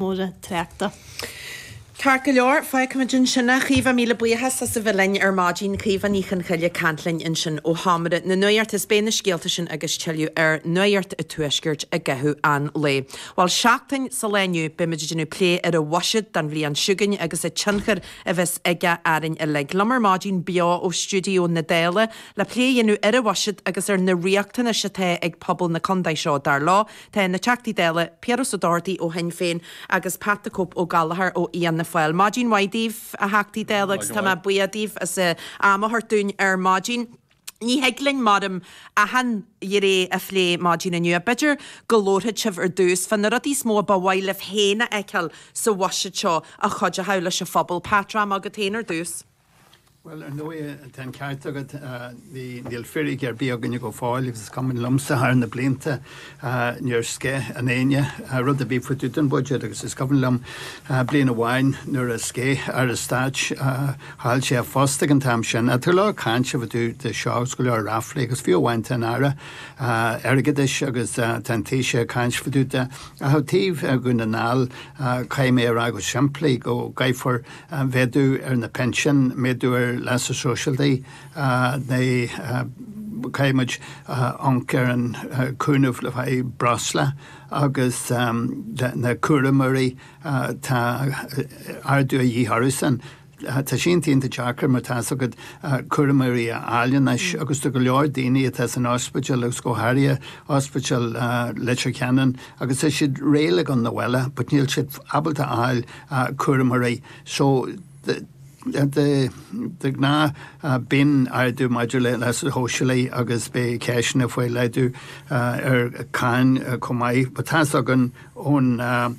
mór an tráchta. Ceart go leor, feicfimid ansin é. Caoimhe, míle buíochas as a bheith linn ar maidin. Caoimhe Ní Chonchoille, ag caint linn ansin ó sheomra na nuachta. Is beidh na scéalta sin agus tuilleadh ar Nuacht an Tuaiscirt i gcaitheamh an lae. Bhuel, seachtain ón lá inniu, beimid ag déanamh plé ar an bhuiséad don bhliain seo chugainn agus an tionchar a bheas aige orainn uilig. Liom ar maidin beo ó stiúideo na Dála le plé a dhéanamh ar an bhuiséad agus ar na riachtanais atá ag pobal na contae seo, dar leo, Tá na Teachtaí Dála, Piaras Ó Dochartaigh ó Shinn Féin agus Pat the Cope Ó Gallchóir ó Fhianna Fáil. Maidin mhaith daoibh, a Theachtaí Dála, agus tá mé buíoch daoibh as am a thabhairt dúinn ar maidin. Ní thig linn, mar a deirim, achan ghné a phlé maidin inniu. B'fhéidir go labharfaidh sibh ar dtús fá na rudaí is mó a ba mhaith libh féin a fheiceáil sa bhuiséad seo a chuideochadh leis an phobal. Pat, rachaidh mé agat féin ar dtús. Bhuel, ar ndóigh, tá an ceart agat. Níl fíric ar bith againne go fóill agus is cuimhin liomsa, thar na blianta níor sceith éinne rud ar bith faoi tús an Bhuidéid agus is cuimhin liom bliain amháin nuair a sceith Aire Stáit, chaill sé a phost ag an t-am sin, tá go leor caint anois faoi seo agus go leor ráflaí agus fiú amháin tá an Aire Airgeadais agus tá an Taoiseach ag caint faoi ach ó thaobh Dhún na nGall, caithfidh mé a rá go simplí go gcaithfear mhéadú ar na pinsin, méadú ar leasa sóisialaí Caithfidh muid amharc ar an cúnamh le haghaidh breosla agus na cúramóirí tá ardú de dhíth orthusan Tá sé iontach deacair mar tá fhios agat cúramóirí a fháil anois agus tá go leor daoine atá san ospidéal agus go háirithe ospidéal Leitir Ceanainn agus tá siad réidh le gabháil chun an bhaile but níl siad ábalta a fháil cúramóirí. So de ghnáth bíonn ardú maidir le leasa shóisialaigh agus beidh ceisteanna faoi laghdú ar cháin chomh maith. But tá 's againn ón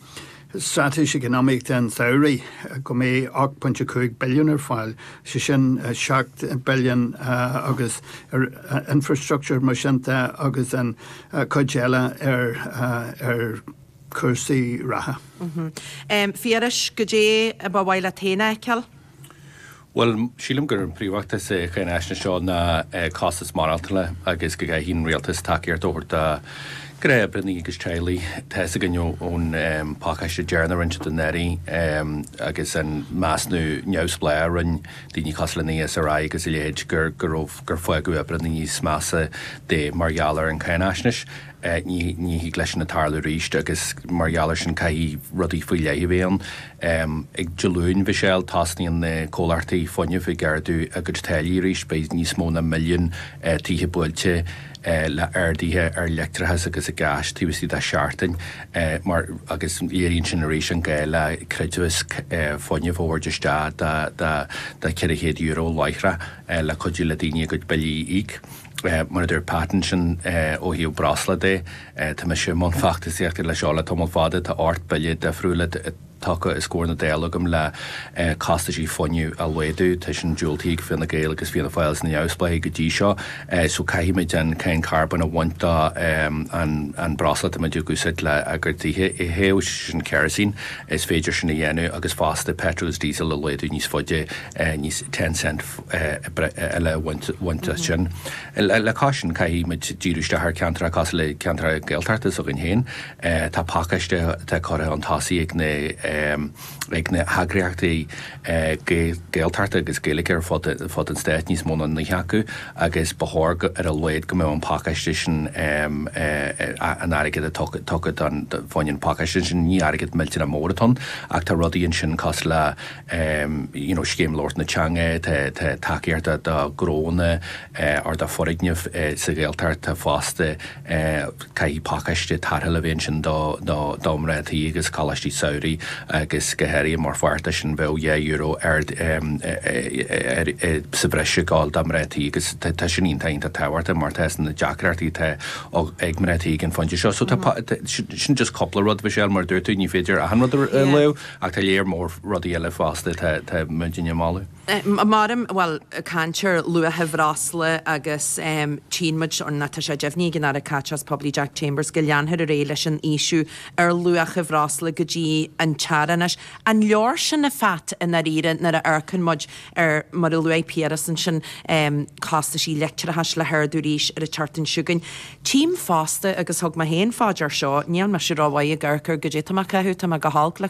Straitéis Eacnamaíochta an tsamhraidh go mbeidh 8.5 billiún ar fáil, sé sin 7 billiún agus ar infrastructure mar sin de agus an chuid eile ar cúrsaí reatha. Phiarais, Goidé a ba mhaith leat féin a fheiceáil? Bhuel, sílim gur príomhfhócas na cáinaisnéise seo ná costas maireachtála agus go gcaithfidh an Rialtas tacaíocht a thabhairt do oibrithe agus teaghlaigh. Tá fhios againn ón phacáiste deireanach a rinne na hAirí agus an measnú neamhspleáach a rinne daoine cosúil le an ESRI agus a leithéid gur fágadh oibrithe níos measa de mar gheall ar an cháinaisnéis. Ní thig leis sin a tarlú arís agus mar gheall ar sin caithfidh rudaí faoi leith a bheith ann. Ag Dé Luain, Michelle, tosnaíonn na comhlachtaí fuinnimh ag ardú a gcuid táillí arís. Beidh níos mó ná milliún tithe buailte le arduithe ar leictreachas agus gás taobh istigh de sheachtain mar agus léiríonn sin arís an gá le creidmheas fuinnimh a thabhairt isteach de €400 láithreach le cuidiú le daoine a gcuid billí a íoc. Mar a dúirt Pat ansin, ó thaobh breosla de, tá mise i mbun feachtasaíochta leis seo le tamall fada, tá ocht bille difriúil tugtha os comhair na Dála agam le costaisí fuinnimh a laghdú, tá sin diúltaithe ag Fine Gael agus Fianna Fáil is na neamhspleáigh go dtí seo, so caithfidh muid an cáin carbóin a bhaint den breosla atá muid ag úsáid lenár dtithe a théamh, sé sin kerosene, is féidir sin a dhéanamh agus fosta petrol is diesel a laghdú níos faide níos ten cent eile a bhaint as sin. Le cois sin, caithfidh muid díriú isteach ar cheantracha cosúil le ceantracha Gaeltachta s'againn féin. Tá pacáiste atá curtha chun tosaigh ag na ag na heagraíochtaí Gaeltachta agus Gaeilge ar fud ar fud an Stáit, níos mó ná 9 acu, agus ba chóir go ar a laghad go mbeadh an pacáiste sin an airgead tugtha fá choinne an pacáiste sin, ní airgead millteanach mór atá ann ach tá rudaí ansin cosúil le, you know Scéim Labhairt na Teanga tá tá tacaíocht do ghnónna or do foirgnimh sa Ghaeltacht tá fosta caithfidh pacáiste tarrthála a bheith ansin do do mhná tí agus Coláistí Samhraidh agus go háirithe mar pháirt de sin bheadh dhá euro ar ar sa bhreis ag gabháil do mhná tí agus tá tá sin iontach iontach tábhachtach mar tá na deacrachtaí atá ag mná tí ag an phointe seo so tá sin just cúpla rud Michelle mar a dúirt tú ní féidir achan rud a léamh Ach tá léar mór rudaí eile fosta atá muidne a mholadh. Mar, bhuel, caint ar luacha bhreosla agus tchíonn muid, nó tá sé deimhnithe ag an Aire Caiteachais Poiblí Jack Chambers go leanfar ar aghaidh leis an ísliú ar luacha bhreosla go dtí an t-earrach. Anois, an leor sin, a Phat, i ndáiríre nuair a amharcann muid ar, mar a luaigh Piaras ansin, costaisí leictreachais le hardú arís ar an tseachtain seo chugainn. Tchím fosta, agus thug mé féin fá dear seo, níl mise rómhaith ag amharc ar goidé atá mé a chaitheamh, tá mé go holc le